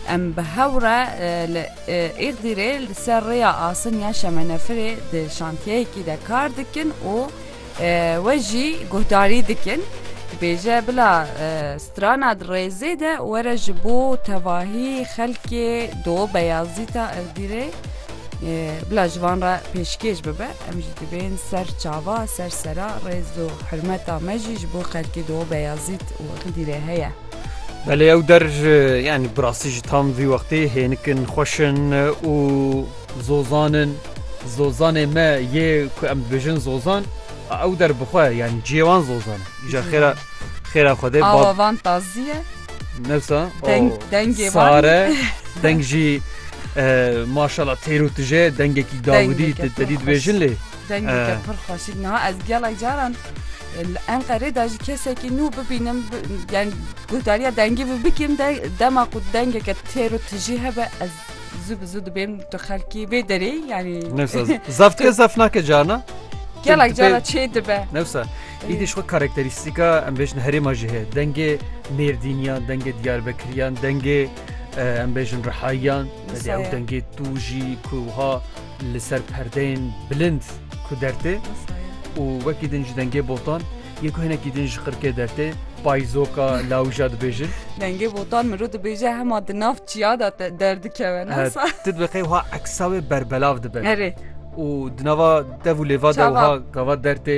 Em bi hev re li Îxdîrê li ser rêya asiniya Şemenefirê di şantiyeyekî de kar dikin û we jî guhdarî dikin. Dibêje bila strana di rêzê de were ji bo tevahî xelkê do Beyazîta Îxdîrê bila ji van re pêşkêş bibe. Em jî dibên ser çava ser sera rêz û hirmeta me jî ji bo xelkê do Beyazît û Îxdîrê heye. Belê ew der yani bi rastî ji tam vî wextê hênikin xweş in û zozan in. Zozanê me yê ku em dibêjin zozan a ew der bi xwe yani ciyê wan zozan e. Îja xêra xêra Xwedê Awa bab van tazî ye. newsa Deng, o dengê van. sare deng jî e, maşala têr û tije dengekî dawidî Dengeke te pir dî xweş. dibêjin lê Dengeke pir xweşik niha ez gelek caran li Enqerê de ji kesekî nû bibînim yani guhdariya dengî bi bikim de dema ku dengeke têr û tijî hebe ez zû bi zû dibêm tu xelkî vê derê yani zaf dike zaf nake carna gelek cara çê dibe newsa îdî xwe karakterîstîka em bêjin herêma jî heye dengê mêrdîniyan dengê diyarbekiriyan dengê em bêjin rihayiyan ew dengê tû jî kuha li ser perdeyên bilind ku dertê û wekî din ji dengê botan yê ku hinekî din ji qirkê dertê payzoka lawija dibêjin. Dengê botan mirov dibêje hema di nav çiya de derdikeve ne sa. Tu dibe qey wiha eksa wê berbelav dibe. Erê. Û di nava dev û lêva de wiha gava dertê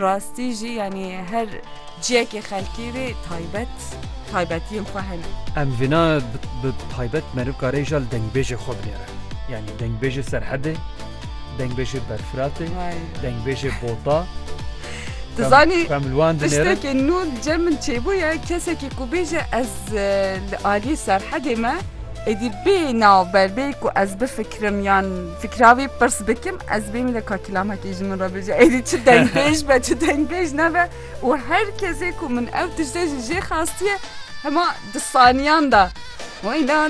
Rastî jî yanî her ciyekê xelkî rê taybet taybetiyên xwe hene. Em vîna bi taybet meriv kare îja li dengbêjê xwe binêre. Yanî dengbêjê Serhedê, dengbêjê Berfiratê, dengbêjê Bota. Tu zanî tiştekê nû li cem min çêbûye kesekî ku bêje ez li aliyê Serhedê me êdî bê navber bê ku ez bifikirim yan Fikra wî pirs bikim ez bêm lê ka kilamekî ji min re bije êdî çi dengbêj be çi dengbêj nebe û her kesê ku min ew tiştê ji jê xastiye hema di saniyan de wîna